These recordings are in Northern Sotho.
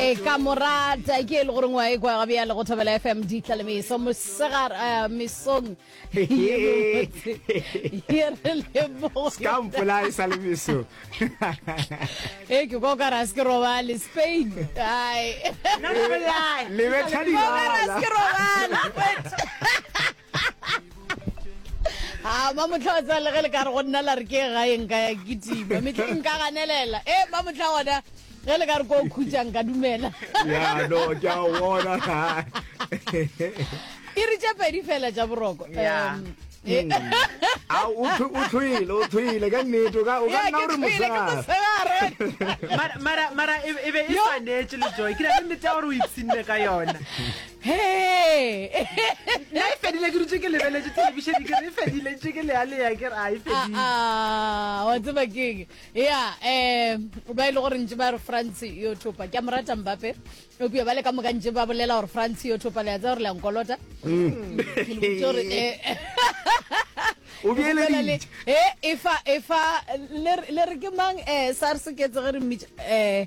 e ka mo rata ke e le goreng wa e kwa ga bjale go thobela fm di tla le meso mosegar eh, mesong ye mebotse ye re leboge ka mpola e sa le meso e ke kwa o ka ra se ke robale spain ai le betha o ka ra se ke dilala robale a ba motlha wa tsaya le ge le ka re go nna la re ke gaeng ka ya ke tima metlhe nka ganelela e ba motlha gona ge le ka re ko o khutšang ka dumela ya no ke a bona iri tše pedi fela tša boroko Yeah. Em, e- a o thwe- o thwele o thwele ka nnete o ka o ka Ya, nna ke o re thwele, ke mosegare mosegare. Mara- mara mara e e be e swanetše le joy ke na le nnete ya gore o ipsinne ka yona na e fedile ke dutse ke lebeletse telebišene ke re e fedile ntse ke lealeya ke re a e fedile Ah, ah, wa tseba keng ya um ba e le gore ntse ba re france yo thopa ke a morata mbape opia ba le ka moka ntse ba bolela gore france yo thopa le a tsa gore le a nkolota Ke le botse gore, eh, O ke bolela le- beeleditše. eh, efa efa le re- le re ke mang um sars ke etse ge re mmitša um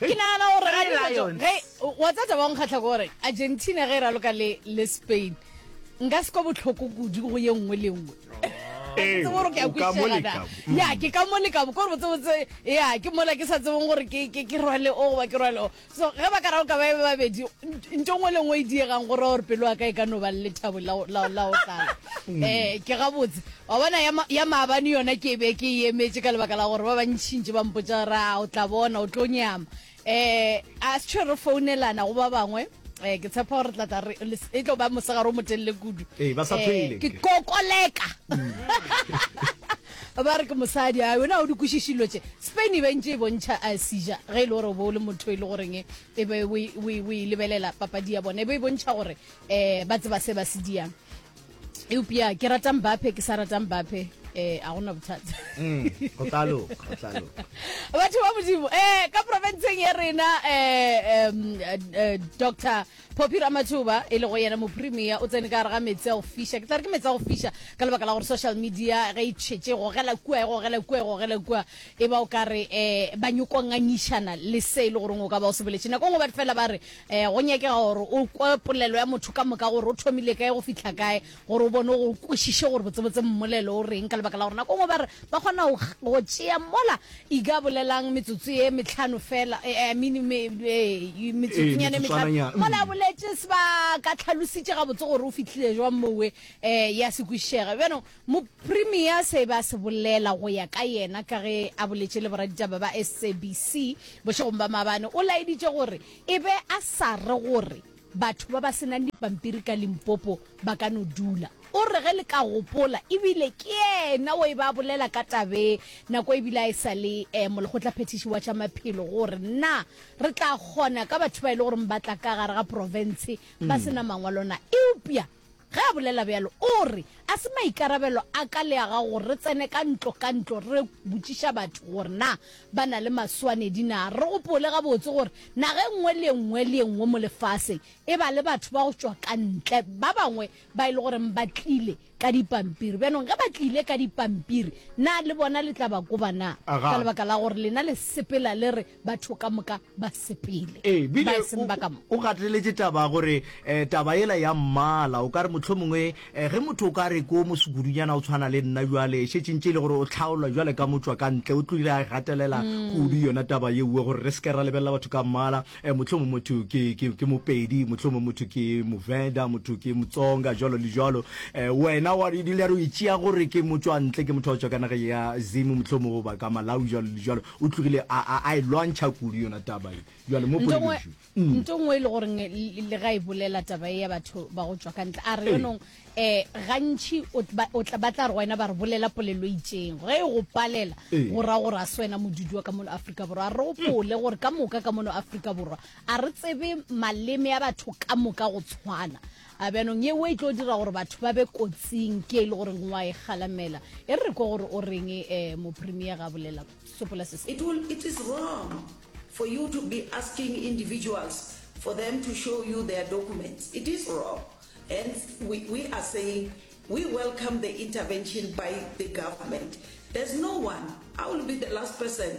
Ke nagana gore ga di batho ge wa tsatsa ba nkgatlha gore Argentina ge e raloka le le Spain nka se kwa botlhoko kudu go ye nngwe le nngwe Ee, gore ke a o ka mo kwisega leka. na ya ke ka mo leka bo kore botsebotse ya ke mola ke sa tsebong gore ke ke ke rwale o goba ke rwale o so ge ba ka ra o ka ba e be babedi nto ngwe le ngwe e diegang gore gore pelo ya ka e ka no ba le lethabo la go- la go- la go tlala um ke gabotse Wa bona, ya, ya maabane yona ke be ke e emetše ka lebaka la gore ba bantšintši ba mpotša gore, A o tla bona, o tlo nyama. Um, a sethwe re founelana go ba bangwe. Um, ke tshepa gore re tla tla re, e tlo ba mosegare o motelele kudu. Ee, ba sa Um, phele, ke nke. kokoleka. Ba re ke mosadi, a wena ga o di kwešiše dilo tše. Spain e be e ntše e bontšha a seja, ge e le gore o be o le motho e le goreng e e be o e, o e, o e lebelela papadi ya bona, e be e bontšha gore um ba tseba se ba se diang. eupša ke rata mbape ke sa rata mbape eh a gona bothata mm, go tla loka go tla loka batho ba modimo eh ka provinceng ya rena eh um eh, dr poppy ramathuba e le go yena mopremia o tsene ka gare ga metsi a go fiša ke tla re ke metsi a go fiša ka lebaka la gore social media ge e tšhetse gogela kua e gogela kua e gogela kua e ba o ka re um ba nyokongangišana le se e le goreng o ka ba o se boletše nako ngwe ba fela ba re um go nyakega gore o kwe polelo ya motho ka moka gore o thomile kae go fitlha kae gore o bone go kwešiše gore botsebotse mmolelo o reng ka lebaka la gore nako ngwe ba re ba kgona go tšea mola ika bolelang metsotso ye metlhano fela eh, eh, eh, metsotsonyane metlhano mola boletse sebaka tlhalositše gabotse gore o fitlhile jwang mowe um ya se kwešišega bjanong Moprimier se e be a se bolela go ya ka yena ka ge a boletše le boraditaba ba SABC bošegong ba maabane, o laeditše gore e be a sa re gore batho ba ba se nang dipampiri ka Limpopo ba ka no dula. O re ge le ka gopola e bile ke yena o e be a bolela ka taba e nako e bile a e sa le molekgotlaphethiši wa tša maphelo gore na re tla kgona ka batho ba e le goreng ba tla ka gare ga profense ba se na mangwalo na. Eupša Ge a bolela bjalo, o re, A se maikarabelo a ka le a gago gore re tsene ka ntlo ka ntlo re botšiša batho gore na ba na le maswanedi na? Re gopole gabotse gore naga e nngwe le e nngwe le e nngwe mo lefaseng e ba le batho ba go tšwa ka ntle, ba bangwe ba e le goreng ba tlile ka dipampiri. Bjanong ge ba tlile ka dipampiri, na le bona le tla ba koba na? Ka lebaka la gore lena le sepela le re batho ka moka ba sepele ee bile ba eseng ba ka mo o gateletse taba gore eh, taba ela ya mmala o ka re motlho mongwe eh, ge motho o ka re ko mosukudunyana o tshwana le nna jwale šetšintše e le gore o tlhaolwa jwale ka motswa ka ntle o tlile a gatelela kudu yona taba yeuwe gore re seke ra lebelela batho ka mmala eh, motlho mongwe motho ke, ke, ke mopedi motlho mongwe motho ke movenda motho ke motsonga jalo le jalo eh, wena wa dile re o itšea gore ke motswantle ke motho wa tswa ka nageng ya zimo motlho mongwe goba ka malawi jalo le jalo O tlogile a, a, a e lwantšha kudu yona taba ye. Bjale, mo Nto ngwe, poledišwe. Mm. nto ngwe e le gore nge le le ga e bolela taba ye ya batho ba go tšwa ka ntle, a re, Ee. yonong, eh, gantši o tl, ba, o tla, ba tla re go wena ba re bolela polelo e itšeng. Ge e go palela, Ee. go ra gore ga se wena modudi wa ka mono Afrika Borwa. A re o pole gore ka moka ka mono Afrika Borwa a re tsebe maleme a batho ka moka go tshwana. A bjanong yeo e tlo dira gore batho ba be kotsing ke e le gore ngwa e galamela. E re re kwe gore o reng eh, Mopremier ga bolela. Sopola se se. It will, it is wrong for you to be asking individuals for them to show you their documents. It is wrong. Hence, we, we are saying we welcome the intervention by the government. There's no one, I will be the last person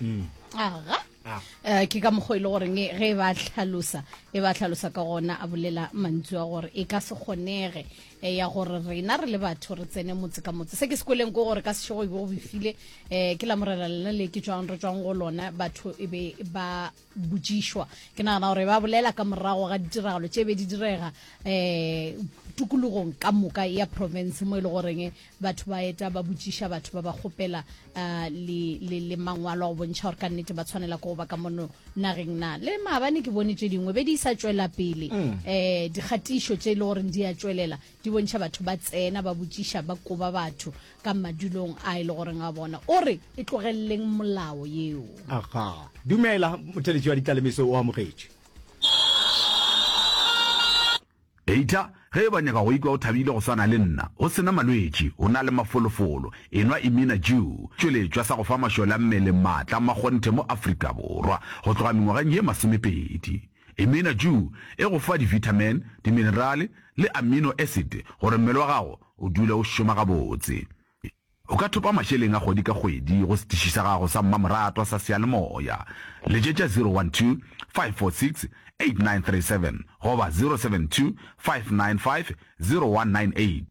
mm. aga eh, ke ka mokgwa e le goreng e, ge e ba tlhalosa e ba tlhalosa ka gona a bolela mantswe a gore e ka se kgonege eh, ya gore rena re le batho re tsene motse ka motse se ke sekoleng ko gore ka sešego e be go befile um ke la morela lena le ke tswang re tswang go lona batho e be ba botšišwa ke nagana gore ba bolela ka morago ga ditiragalo tše be di direga um tokologong ka moka ya province mo e le goreng batho ba eta ba botšiša batho ba ba kgopela um le, le, le mangwalo go bontšha gore ka nnete ba tshwanela ke go ba ka mono nageng na le maabane ke bone tše dingwe be di sa tšwela pele um dikgatišo tše e le goreng di a tšwelela Di bontšha batho ba tsena ba botšiša ba koba batho ka madulong a e le goreng a bona. O re e tlogeleleng molao yeo. Aga. Dumela, motheletši wa ditlalemeso o amogetše. Eitla ge eba o nyaka go ikwa o thabile go swana le nna, o se na malwetši, o na le mafolofolo, enwa Imina Jew, tšweletšwa sa go fa mašole a mmele maatla a makgonthe mo Afrika Borwa go tloga mengwageng ye masomepedi. E mena ju e go fa divitamin, diminerale le amino acid gore mmele wa gago o dule o šoma gabotse. O ka thopa mašeleng a kgwedi ka kgwedi go setiši sa gago sa mmamoratwa sa seyalemoya. Letšetša 012-546-8937 goba 072-595-0198.